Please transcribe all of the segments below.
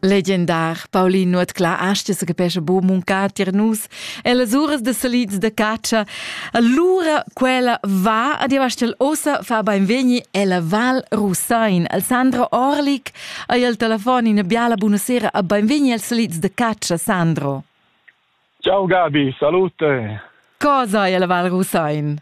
Legendar Paulin Nuotclà asta se capesce bo muncar tier nus e las uras de salids de caccia allura quella va ad Ivastel ossa fa beinvegni ella Val Rusain al Sandro Orlik ai al telefon in biala buonasera a beinvegni al salids de caccia Sandro Ciao Gabi, salute Cosa ai alla Val Rusain?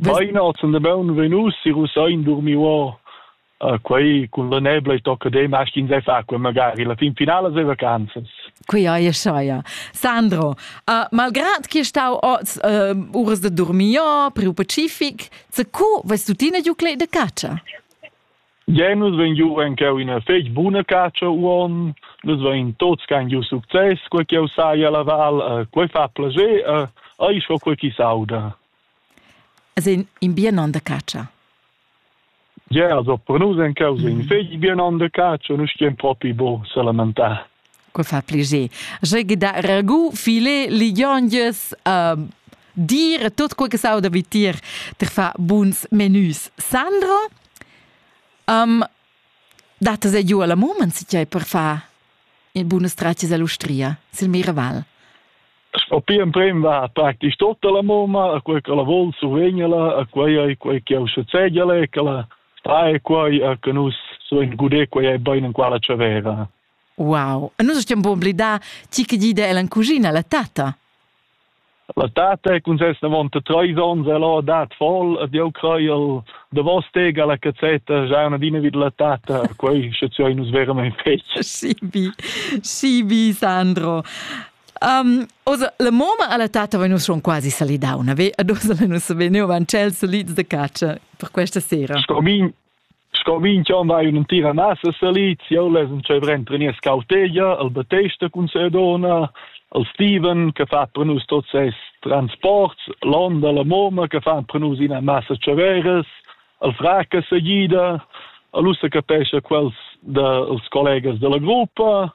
Bainot sun da baun venus si Rusein durmi uo uh, quei cun la nebla e tocca de maschin sei fa quei magari la fin finala sei vacanzas Qui ai saia. Sandro, uh, malgrad che stau oz uh, uras de dormio, priu pacific, se cu vas tutina giu clei de caccia? Genus ven giu en cheu ina fec buna caccia uon, les ven tots can giu success, quei cheu saia la val, uh, quei fa plager, uh, ai scho quei chi sauda. As in, in bien on da catscha. Yeah, also per nus en causa in fegli bien on de caccia, nus stien propi bo salamentà. Qua fa pliger. Jeu gida ragu file ligionges uh, dir tot quel che sau da vitir ter fa buns menüs. Sandro, um, date se giù alla moment si per fa in buona straccia all'Ustria, sil Miraval. Spi emprem va praktisch tutta la mumma, a quei che la vol survegnela, a quei ei quei che eu sezegele, che la trae quei, a che nus suen gude quei ei bein en quala c'aveva. Wow. E nus stiamo un blidar ti che dida è la cugina, la tata. La tata è con ses davant tre ons e l'ho dat voll ed io creo de vostega la cazzetta già una dina vid la tata, quei sche ci nus veramente fece. Sì, bi. Sì, bi Sandro. Um, oz, la moma alla tata vegn schon quasi salidauna, ve? Ad oz la nus vegniu van cel solids de caccia per questa sera. Scomin, scomin chon vai un tira nasa salits, io les un cevre entri nies cautegia, al Batesta cun Sedona, al Steven che fa per nus tots ses transports, l'onda la moma che fa per nus ina massa ceveres, al fraca seguida, al ussa capesce quels dels collegas della gruppa,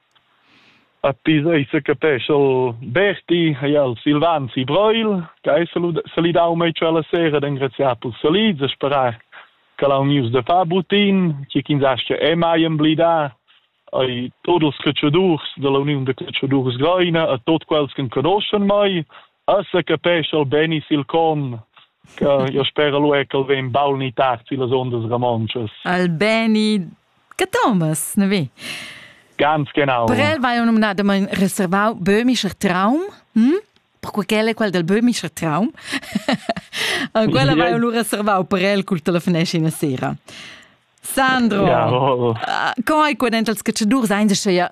A tis ei secapescha Berti, hai el Silvan si Breil, che ei salidau mei quella sera d'engraziar pils salids e sperar che ha unius da far butin, che ch'ins astga e mai emblidar ei tots els catschadurs dalla uniun da catschadurs Greina e tots quels che conoschan mei Assa capescha el beni sil con, che io spera lu è che el vegn baul ni tard sillas ondas ramontschas. Al beni che Thomas, ne vi? Ganz genau. Per el vai nominadament reservau böhmischer Traum, hm? perquei quel è quel del böhmischer Traum. quella vai lu reservau per el col telefoneschi una sera. Sandro, ja, oh, oh. co hai quedent als cacciadurs ein ja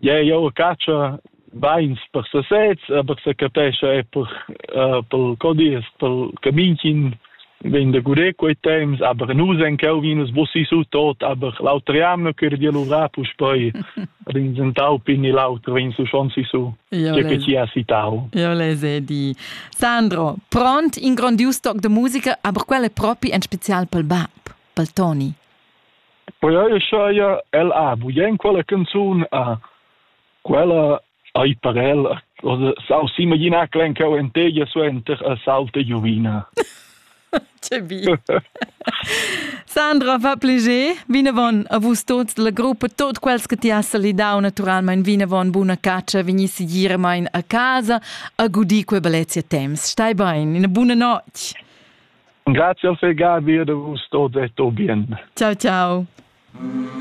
Ja, jau catscha bains per sasez, aber se capescha è per, uh, per codies, per caminchin vegn da gudé quei temps, aber nus en cheu vinus bussi su tot, aber l'auter jamno chür di luvra puspei rinzentau pin e l'auter vegn su schon si su. Io che ci ha citau. Io le se di Sandro, pront in grandius toc de musica, aber quelle propi en spezial pel bab, pel Toni. Perquei saja el ha bugen quella canzun, ah, quella ei per el s'auzi imaginar quell'encheu enteglia suenter a sauta giuvina. Tge bi. Sandra, va pleger, vinavon a vus tots la gruppa, tot quels che ti has salidau naturalmein vinavon buna caccia, vegnissi giremain a casa a gudì quei bellezia temps. Stai bein, ina buna notg. Grazie al Gabi e da vus tot e tot bien. Ciao ciao.